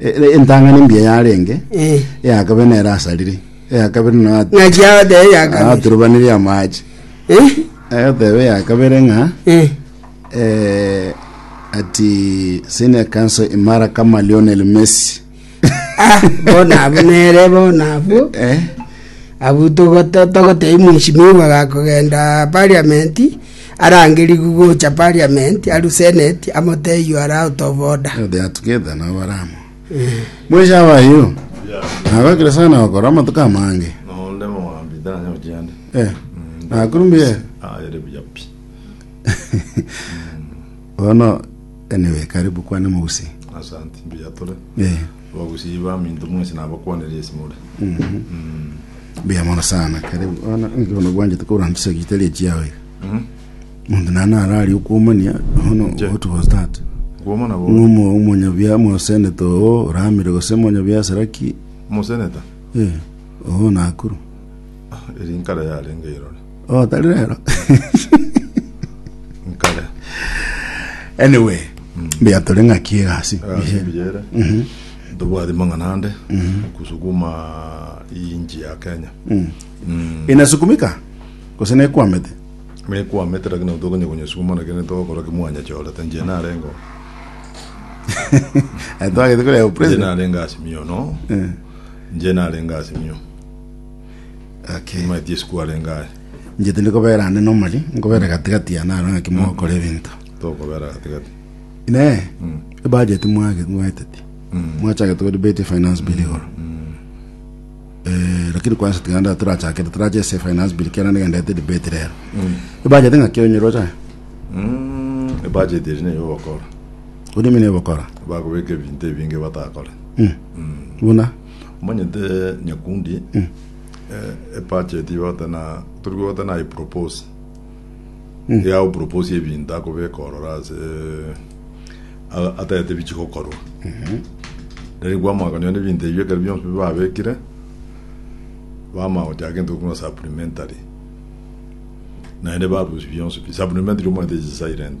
E- Entang'ani embuya yarenge, Eh. eya kabere nere asarire, eya kabere na Ng'aki yao tebe yakabiri. aturubanire amache. Eh? Agoteba eya kabere ng'a Eh. eh, ati senior council imara kama Lionel Messi. Ah, bona abo nere bona abo. Eh? abu togotei mwishimiwa gakogenda parliament arangerigwe gocha Parliament aru Senate amotebie you are out of order. Igo they are together nabo bare amo bwesha abayo nagokire sana gokora amatuko amange Nonde mogambi taranya gochia ande. Eh, nakuru mbuya Ah, ere buya pi. bono anyway karibu kwane mogusi Asante, mbuya tore. Eh. Bagusii baminto mwensi nabakwanere esimore. Mbuya mono sana kare bono nigo nabwanchete koranchisa riita ria chiao iga monto naye nararie okwomania bono what was that Kwomana bo ng'uma omonyabiaa moseneta oo oramire gose omonyabiasara ki moseneta eh oo nakuru eri nkare yarenge irore. Oh, tari rero. nkare Anyway, mbuya tore ng'aki egasi. asibiyere tobwati mang'ana ande kusukuma iyi nchi ya kenya Inasukumika? Gose nekwamete? mekwamete lakini tokonya kunyesukuma lakini togokora kimwanyachorete nje narengo Eh, twagete koreba nje president. narenga asimio no Eh. nje narenga asimio Gaki. Nyuma Yesu kwarenge aye, Inche tindi kobera ande nomori, nkobera gati-gati yane aro ng'aki mogokora ebinto. tokobera gati-gati. Inee, ebudget mwage- mwaeteti? Mwachagete gori beti finance bill igoro. Eh, lakini kwanza tiganda torachakere, torache ase finance bill kera nigendete debate rero. Ebudget ng'aki onyeroche aye? Mm, ebudget eri neye ogokora, Odimi nebokora. bakobeka ebinto ebinge batakore. Buna? omanyete nyakundi eh, epachet ibata na turi kwebata na ipropose yao propose ebinto akobeka orora ase a- atete bichigokorwa rero kwamakonyiwa n'ebinto ebio ekero bionsi bibabekire bamagochaka gento gokuna supplementary naende barusi bionsi pi supplementary omanyete is silent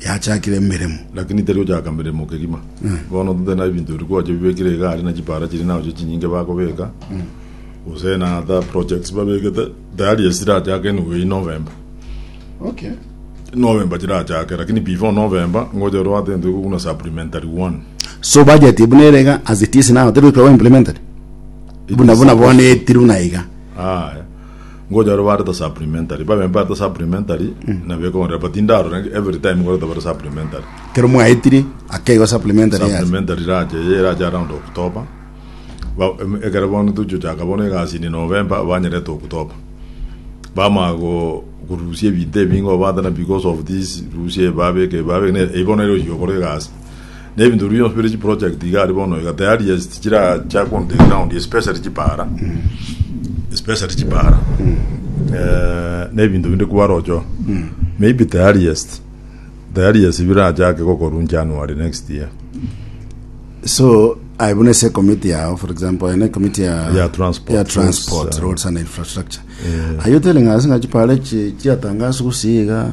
yachakire emeremo. Lakini tari gochaka meremo kegima. Bono totari na ebinto biria kwancha bibekire iga aria na chipara chiria na gochia chinyinge bakobeka, gose na ata projects babegete tayari ase chirachake in way November. Okay. November chirachake lakini before November ngocha ore oate egento egokuna supplementary one. So budget buna ere iga as it is now teri goika goimplemented? Buna buna bono etiri buna iga. Aye. Ngocha baria bareta supplementary, babe mbareta supplementary, na bekonrera, but indarora nge- every time ngoreta bare supplementary. kero mwaetire akeigo supplementary yase. Supplementary rache, eye erache around October. Ba- em- ekero bono tochigochaka bono egasi inde November, banyerete October. Bamanya go- korusia ebinto ebinge obwate na because of this, rusia eye babeke eye babeke, ne- eyio bono nere ochia okora egasi. Nebinto bionsi bire chiproject iga aria bono iga tayari yes tichiracha on the ground especially chipara especially chipara Eh, nebinto binde kwarocho maybe tayari yes tayari yes birachake gokorwa January next year so aye buna ase ekomiti yao for example ene ekomiti ya Ya transport, ya transport roads, uh, roads and infrastructure aye otele ng'a ase ng'a chipare chi chiatangaswa gosiiga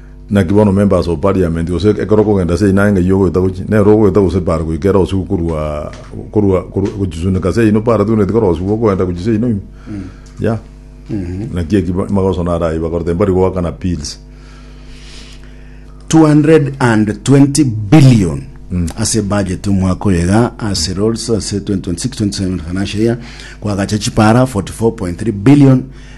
Naki bono member ase o parliament, gose ekero okogenda ase eyina ng'ai ogoeta gochia, nere ogoeta gose bare goika ere osigo korwa korwa korwa gochisuneka ase eyina opare togeneti kore osigwe okoenda gochia ase eyina ime. Yea. Naki eki ba- magoso naro ayio bakorete mbari goakana pills. 220 billion ase budget omwaka oyo iga ase roads ase 2026-27 financial year kwagacha chipara 44.3 billion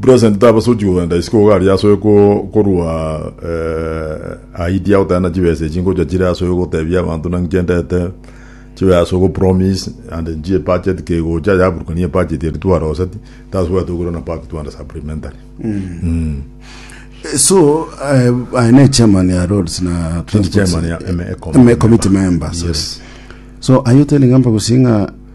Present tabasochi kogenda isiko iga aria asoe korwa ahidi agotebana chibesa echi ngocha chire asoe gotebia abanto naki chendete chibe asoe go promise and nchi e budget kegocha yaburukani e budget eri twaroseti tasubwate okora na part twande supplementary so uh, I ne chairman ya roads na Nchi chairman ya MA committee. MA committee members Yes. so are you telling amba gusinga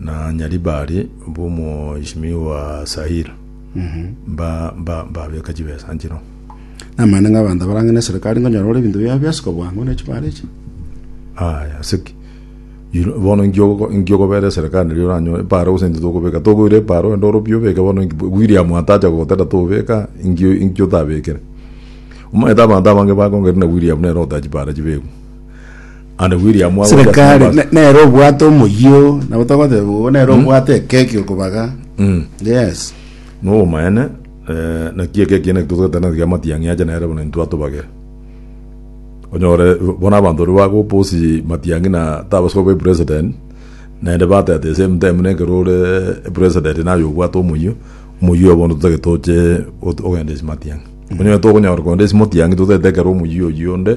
na Nyaribari bw'omoishimi wa Sahira, mba- mba- mbabeka chibesa nchino. Namanyete ng'a abanto abarang'e neserikari nkonyora ore ebinto biabo biasika bwango ne chimari echi. Aya, siki. Yiro- Bono nkiogoko- nkiokobera eserikari riria oranyo epara gose intwe tokobeka. Tokoira epara ogende ore obuya obeke bono nki- William atacha gogotera tobeka, inkio inkio otabekire. Omanyete abanto abange bakongeire na William nere otaha chipara chibekwe. And William Wagwe just serekari numbers. ne- nere obwate omoyio nabo togoteba bogo nere obwate ekeki okobaga Mm. yes No omaene eh, naki eke kiene kitotogete na tiga matiang'i ache nere bono intwe atobagere. Onyore bona abanto ori bago posi matiang'i na tabaswa be president nende batete same time neke rore president na yo bwate omuyo omuyo abono tutake toche ogende isi matiang'i. Onyore tokonyora konde isi matiang'i tutete kero omuyo yonde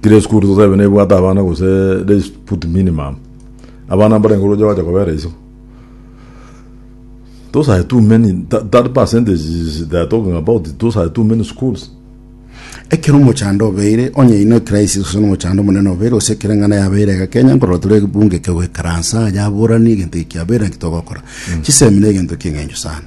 Tire esukuru tosebe nebwate abana gose they put minimum abana mbarenge oroche bache kobera iso those are too many that, that percentage they are talking about those are too many schools ekero omochando obeire onye ino ecrisis gose nomochando omonene obeire gose ekero eng'ana yabeire iga kenya nkorora tore ebunge ekegoikaransa yaborani egento eki kiabeire naki togokora chisemi na egento kieng'encho sana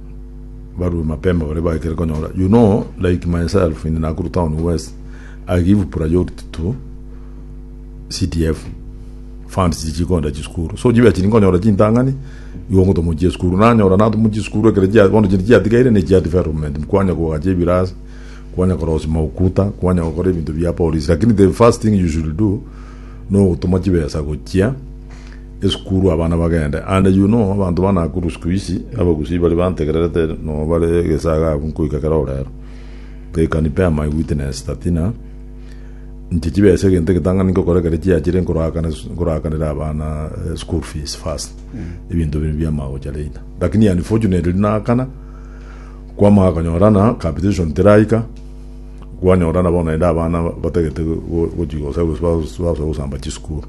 barue mapema baria baikire konyora you know like myself in Nakuru town west I give priority to CDF funds chichikonda chisukuru so chibe chiri nkonyora chintang'ani igo ngotomo chia esukuru nanyora natomo chisukuru ekero chia bono chiri chiatigaire ne chia development kwanya kogacha ebirasi kwanya korosi maukuta kwanya gokora ebinto bia polisi lakini the first thing you should do nogotoma chibesa gochia esukuru abana bagende, and you know abanto ba Nakuru siku hizi abagusii bari bantegererete no bare gesaga abwo nkoika kero orero they can bear my witness that ina inche chibesa egento egetang'ani nkokora kere chiachire nkorakana nkorakanera abana eh, school fees first ebinto biri biamagocha later lakini unfortunately nakana kwamaka konyorana capitation teraika kwanyorana bono naende abana batagete go- gochigosa gose basoa gosamba chisukuru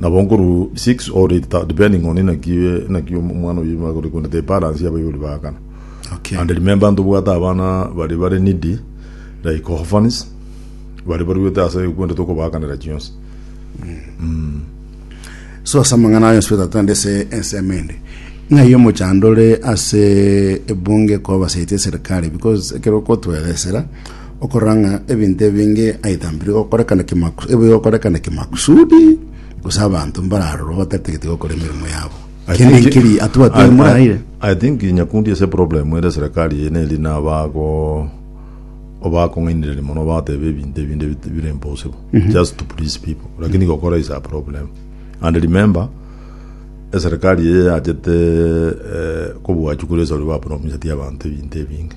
Nabo nkorwa six or eight thou- depending on inaki inaki om- omwana oyo nigo akore korende the balance y'abaibori baakana Okay. and remember ntobwate abana bari bare needy like orphans bari baruete ase ekwende tokobaakanera chionsi so ase amang'ana ayo nsueta tande ase ensemo ende ng'ai omochandore ase ebunge kobasetie serikali because ekero okotweresera Okorora ng'a ebinto ebinge aidha mbiri gokorekana kimaku- ebi gokorekana kimakusudi, gose abanto mbararorwe batatagete gokora emeremo yabo. I Kende think- nkeri I- atwatire I- moraire. I think nyakundi ase problem ere serikali eye neri nabago obakong'ainereria mono bateba ebinto ebinde bit- bire impossible just to please people lakini gokora is a problem and remember eserikali eye yachete eh, kobwachukura esori bapromiseti abanto ebinto ebinge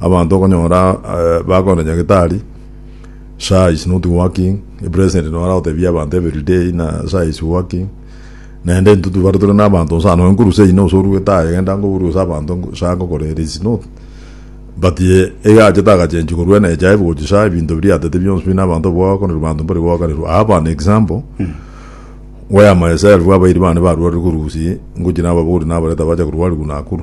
Abanto okonyora bakorenta nyagetari sha is not working, a president noro aragotebia abanto every day ng'a sha is working. Naende intwe twebare tore na abanto nsa nonya nkoruse ino gose orue taye genda ngoburu gose abanto ngo- sha ngokora ere is not. But ye iga achete agachenchwa korwa NHIF gochia sha ebinto biria atete bionsi pi na abanto abwo bagokonerwa abanto mbari goakanirwa. I have an example where myself abairi bane barwarire korwa Gusii ngochia nababori nabareta bacha korwarigwa Nakuru.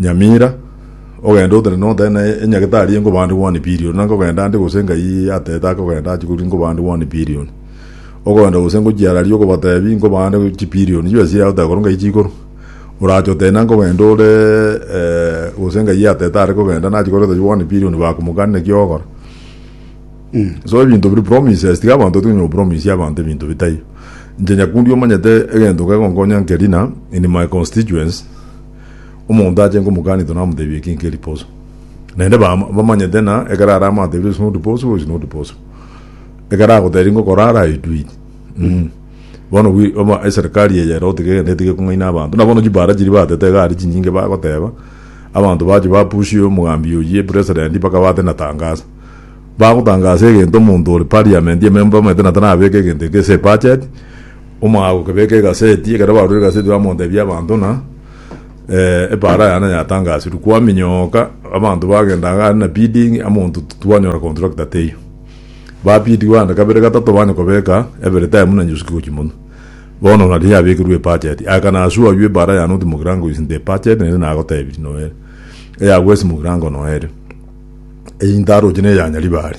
Nyamira, ogende otere notere na enyagetari enko bande one billion, na nkogenda ande gose ngai atete akogenda achie korwa nko bande one billion. Okoenda gose ngochiararia okobatebi nko bande chibillion chibesi yao tekorwa ngai chikorwa. Orache otebe na nkogenda ore gose ngai atete are kogenda nachie koreta chio one billion bakomokani naki ogokora. So ebinto biri promises tiga abanto batige kopromise abanto ebinto bitari. Inche nyakundi omanyete egento kegonkonya nkeri na in my constituents, Omonto ache nkomogaanito namoteebie eki nke riposo. Naende ba- bamanyete na ekero are amateebire ase noriposo, ase noriposo. Ekero agoteebie ngokora are aeduidi. Mm. Bono bwi- oba eserikari eye ere otige egende etige kong'aina abanto. Na bono chibara chiri batete iga ari chinyinge bagoteeba, abanto bache bapushie omogambi oyio president mpaka bate na tangasa. Bagotangasa egento omonto ore parliament, ememba omanyete na tarabeke egento eke ase ebudget, Omogaka gokebeka egaseti, ekero barure egaseti bamotebia abanto ng'a epaara yane yatangasirwe, kwaminyoka abanto bagenda iga are na bidding amonto twanyora contractor teiyo. Ba bid bande kabere gatato bande kobeka every time buna nyuski gochia monwe. Bono nari yabekirwe ebudget, I can assure you epaara yane otimogira ng'a is in the budget naende nagotebirie noere. Eyagwe esimogira ng'a noere. Eyio ntaroche neya Nyaribari.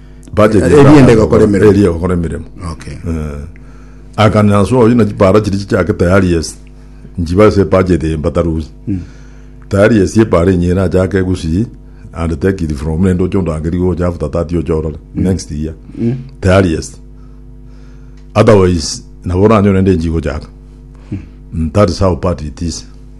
Budget Eria ende egokora emeremo. Eria egokora emeremo. Okay. Eh, akana ase oyo na chipara chiri chichake tayari yes nchiba ase budget eye mbatarusi tayari yes epara enye ere achake gusii and take it from nende oche ondangeri gocha after that oche orore next year tayari yes otherwise nabo oranyore nde nchigochaka Mm, that is how bad it is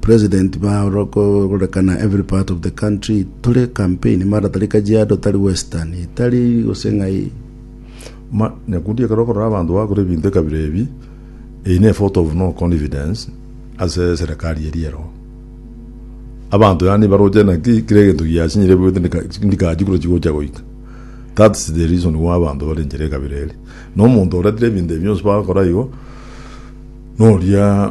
President baaro korekana every part of the country tore campaign mara tari Kajiado tari Western tari gose ng'ai Ma, nyakundi ekero okorora abanto bagakora ebinto ekabira ebi, eyi ne vote of no confidence ase serikali eri ero. Abanto yaani baroche naki kira egento giasinyire bwete ndika- ndikachi kuro chigocha goika. That's the reason why abanto bare enchera ekabira eri. Na omonto oretire ebinto ebi bionsi bagakora igo, noria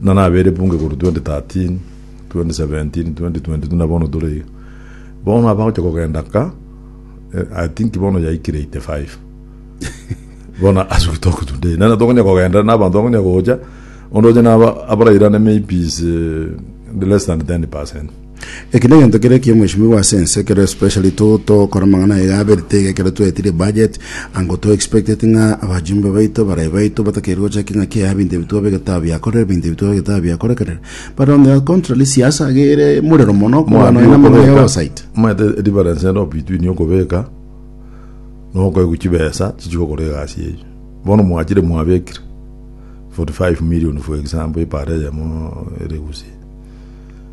na nabere bunge korwa 2013, 2017, 2022 na bono tore iga. Bono abagocha kogenda ka, eh, I think bono yaikire 85. bono asuki tokotunda eye. Nana tokonya kogenda na abanto bakonya gocha, onde oche na abarairane maybe is eh, less than 10%. Eki negento kere ekiomweshimiwa ase ense ekero especially to tokora amang'ana aye aberete iga ekero twetirie budget ango to expecteti ng'a abajumbe baito barayi baito batakeire gochakia ng'a kiaya binto ebi twaba egetao biakorire binto ebi twaba egetao biakorekerire but on the contrary siasa iga ere morero mono korwa nonya namang'ana ya oversight omanyete edifarence ero between okobeka na okoegwa chibesa chichi gokora egasi eyio bono mwachire mwabekire 45 million for example epara eyemo ere gusii.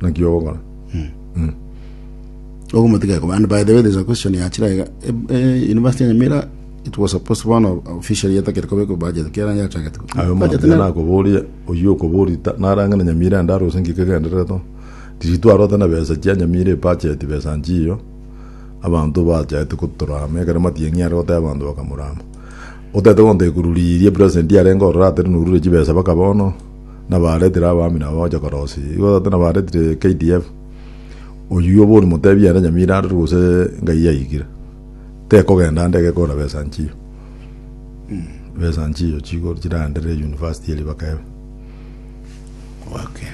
naki ogokora ogomotiga ekobande by the way there's a question yachira iga e- e- university ya nyamira it was supposed one of officially etakere koba eko budget kera yachagete ayo Budget mambia na- nakoboria oyio okoborita narang'ana nyamira ande arose ngika egendereto tiritwarota na besa chia nyamira ebacheti besa nchiyo abanto bachaete gotorama ekero matiang'i are goteba abanto bakamorama otete gontekururiria president yarenge ororo atere norure chibesa baka bono nabaretire abami nabo bagocha korosia. Igo tata nabaretire KDF, oyio bono motebie ere nyamira arure gose ngai yaigire. Tekogenda ande egekora besa nchiyo. Besa nchiyo chigo chiraendere university eria bakebe. Okay.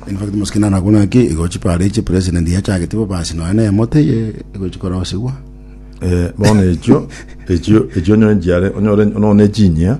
In fact mosike naro agwo naki igo chipara echi president yachagete bo basi nonya na emote eye igo chikorosigwa. Eh, bono echio, echio, echio onye nchiare, onyore, onone chinyia,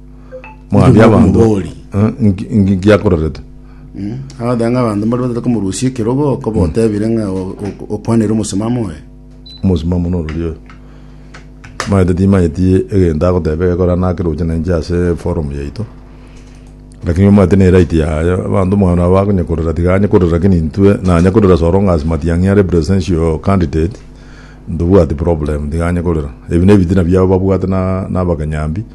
Mwabia abanto Omobori. Eh, nki- nki- nkiakororete Agoteba ng'a abanto mbari batete komorusia ekerogo, okoba otebire ng'a o- o- okwanire omosimamo oye. omosimamo norori oyo maete timanyeti egento agoteba egekora nakeroche na inche ase forum yaito lakini omanyete ne right yaye abanto mwana abo akonya korora tiga anye korora lakini intwe nanye korora so long as matiang'i are presidential candidate ntobwati problem tiga anye korora ebi nebitina biabo babwate na na abakanyambi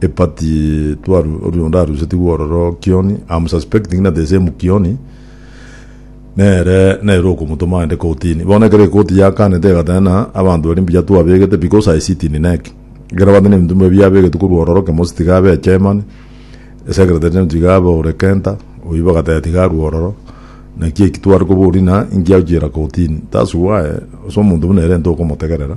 Epati twaru oria onde arusetigwe ororo Kioni, I'm suspecting na the same Kioni nere nere okomotoma aende kotini. Bono ekero ekoti yakanete egatena abanto baria mbuya twabegete because I sit in NEC. Ekero abanto na ebinto bibwe biabegetwe korwa ororo Kemosi tiga abe chairman, secretary general tiga abe ore Kenta, oyio bagateba tiga arue ororo. Naki eki tware koboria ng'a inki agochiera kotini. That's why ase omonto buna ere ntokomotegerera.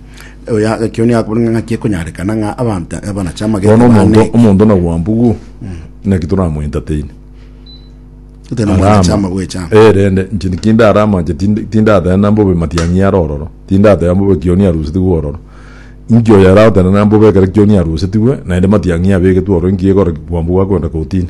Oya, ekio nigo akobona ng'a ng'aki ekonyarekana ng'a abanto abanache amagete bono omonto baaneke. omonto na gwambugu naki toramoentertaini Gotee na amagete ama bwecha. Eh, rende inche tikindara amache tindi- tindatenena mbobe matiang'i are ororo tindateba mbobe kioni arusetigwe ororo inki oyo aragotenena mbobe ekero kioni arusetigwe naende matiang'i abegetwe ororo inki egora gwambugu akoenda kotini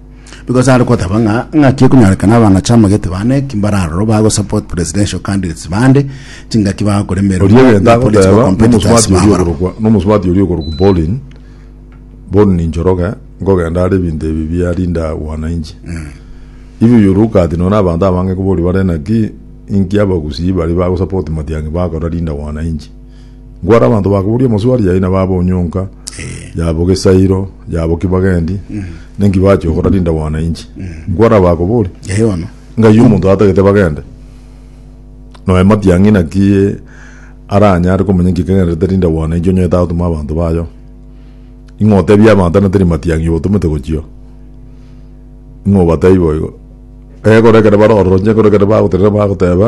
Because are goteba ng'a ng'aki ekonyorekana abang'achi amagete bane ki mbararoro ba go support presidential candidates bande chingaki bagakoremerwa Oria egento na political agoteba competitors nomosubati oria babarabwo. okorokwa nomosubati oria okorokwa Bolin Bolin Njoroge nkogenda are ebinto ebi biarinda wananchi if you look at nonye na abanto abange koboria bare naki inki abagusii baria bago support Matiang'i bakora Linda Wananchi Nkware abanto bakoboria omoswali yaye na baba onyonka yabo gesairo yabo ki bagendi nenki bache ogora rindagwana inchi nkware abakobori Yaye bono. ngaiyo omonto atagete bagende noe matiang'i naki aranyare komenya nki kegenderete rindagwana inchi onye tatuma abanto bayo ing'o otebia abanto na teri matiang'i obotomete gochio ing'o obatebi boigo egoro ekero baroro onye ekero ekero bagotenena bagoteba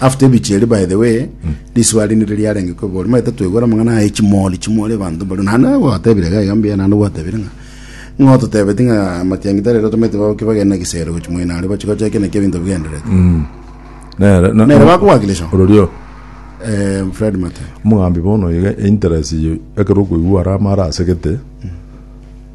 After ebiche erio by the way riswali nire riarenge ko bori maete twegora mangana aye chimori chimori bantu bari na na watebire ga iga mbiya na na watebire nga ngo tutebeti nga matiangi tare ro tumete babo kibagenda gisero gochi moina ari bachi gocha kene kebinto bigenderete Nere- na- nere bakuwakilisha ororio eh Fred Mate omogambi bono iga interest eye ekero okoigwa are amara asegete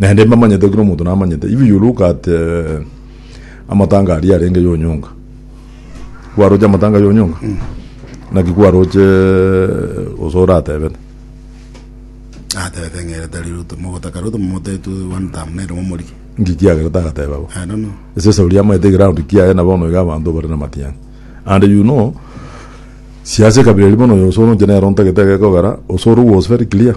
Naende mbamanyete buna omonto namanyete. Ibi Luka ate amatanga aria arenge yonyonga. Kwaroche amatanga yonyonga? Naki kwaroche gose oratebete? atebete ng'erete riruto mogotaka riruto momotetu one time nere momorike Nki kiagera tagateba bo? I don't know Ese Sauli amanyete egeround kiaye na bono iga abanto bare namatiangi. And you know, siasa ekabira eria bono oyo osore inche nere ontagete egekogera, osore was very clear.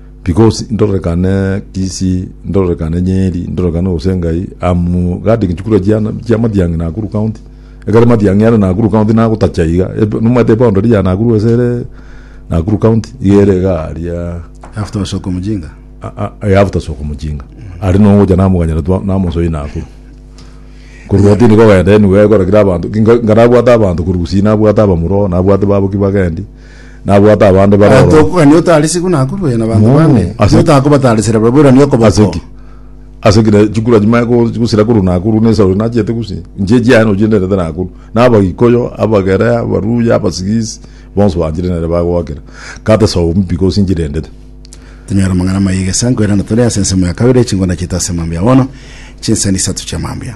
Because ndororekane Kisi, ndororekane Nyeri, ndororekane gose Ngai, am guarding chikura chiana chia Matiang'i Nakuru County. Ekero Matiang'i are Nakuru County nagotacha iga, eb- nomanyete eboundary ya Nakuru gose ere Nakuru County, iga ere iga aria After Osoko Mujinga. a- a- ya after soko mujinga ari nogocha namoganyera twa namosoi nakuru korwa tindi kogenda anywhere ekora kira abanto nka- nkarabwate abanto korwa gusii nabwate abamura oo nabwate baboki bagendi Nabwate abande bare Abanto ororo. okogania otarisigwe nakorwe nabanto Mm, bande, ase- erio otakobatarisera barabwo erani Ase okoboko. ki? Ase kina chikura chimanye ko- gosira korwa nakuru na esaro nachete gusii. Inche echiaye nochinderete nakuru. Na Abaikuyu, Abagere, Abaluya, Abasigisi, bonsi banchire nere bagoakera. Kata esomi because nchirendete. Tonyore amang'ana amaya egesankwa erinde tore ase ensemo ya kabere, chingona chiaito ase mambia bono, chinsemo isato chia mambia.